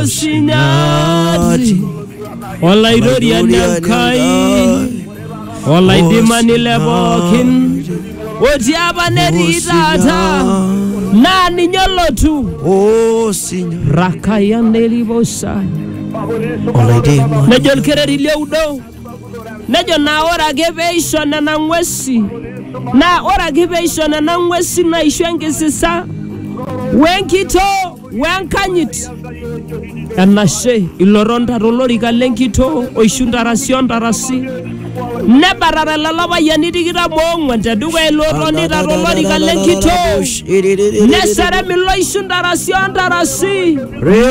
Osinyaati olaitoriani Enkai olaidimani le pookin otii apa netii taata naa ninye olotu Osinya rakayan eriposa olaidimani nejo olkereri lioudo nejo naa ore ake peisho nena ng'uesi naa ore ake peisho nena ng'uesi naisho enkisisa wenkitoo wenkanyit enashe ilotonta tolorika lenkitoo oishu ntarasi ontarasi nebatata lelo payiani tikitam oong'uan tedukuya ilo otonita tolorika lenkitoo neserem ilo oishu ntarasi ontarasi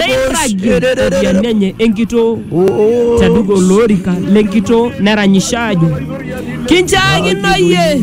neirragi iropiyiani enye enkitoo tedukuya olorika lenkitoo neranyisho aajo kinchaakino iyie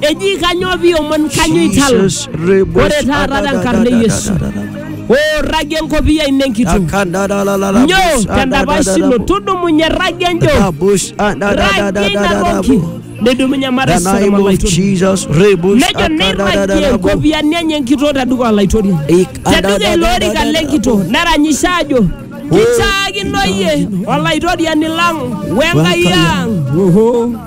eji kanyoo piomon kanyoo itala ore taata tenkarna e yesu oirragie enkopiyia ino enkitok nyoo tendapash ino tudumunye irragie enjo irragie ina toki nidumunye matasara name of malaitoriani Jesus. Rebush. nejo neirragie nkopiyiani enye enkitok teduka olaitoriani teduka ilo orika lenkitok neranyisha ajo kichaakino iyie olaitoriani lang wenkai ang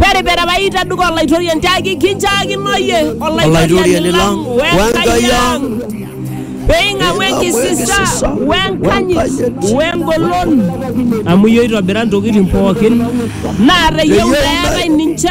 Peripera paita duka olaitoriani tiaki kinchaakino iyie olaitoriani lang wenkai ang peing'amu enkisisa wenkanyit wengolon amu iyie oitobira ntokitin pookin naa teyieu eetae ninche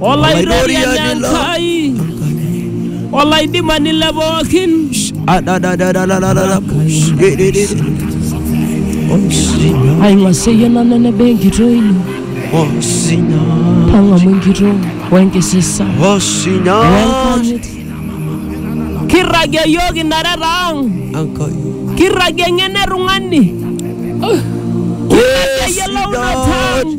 Olaidoriani Enkai, olaidimani le pookin, aiwaseyie nanu eneba enkitoo ino, tang'amu enkitoo wenkisisa wenkanyit. Kirragie iyiook inareta ang', kirragie eng'eno e tung'ani, kirragie eyiolounoto ang'.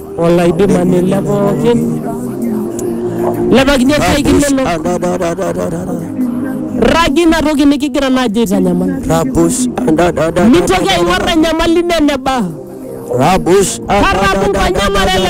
Olaidimani le pookin. Lepakini orsae kilelo. Rragi ina toki nikigira naaji aitanyamal. Rabus Mitoki aing'or enyamali ino eneba. Rabus Karramu nkonyek ore lelo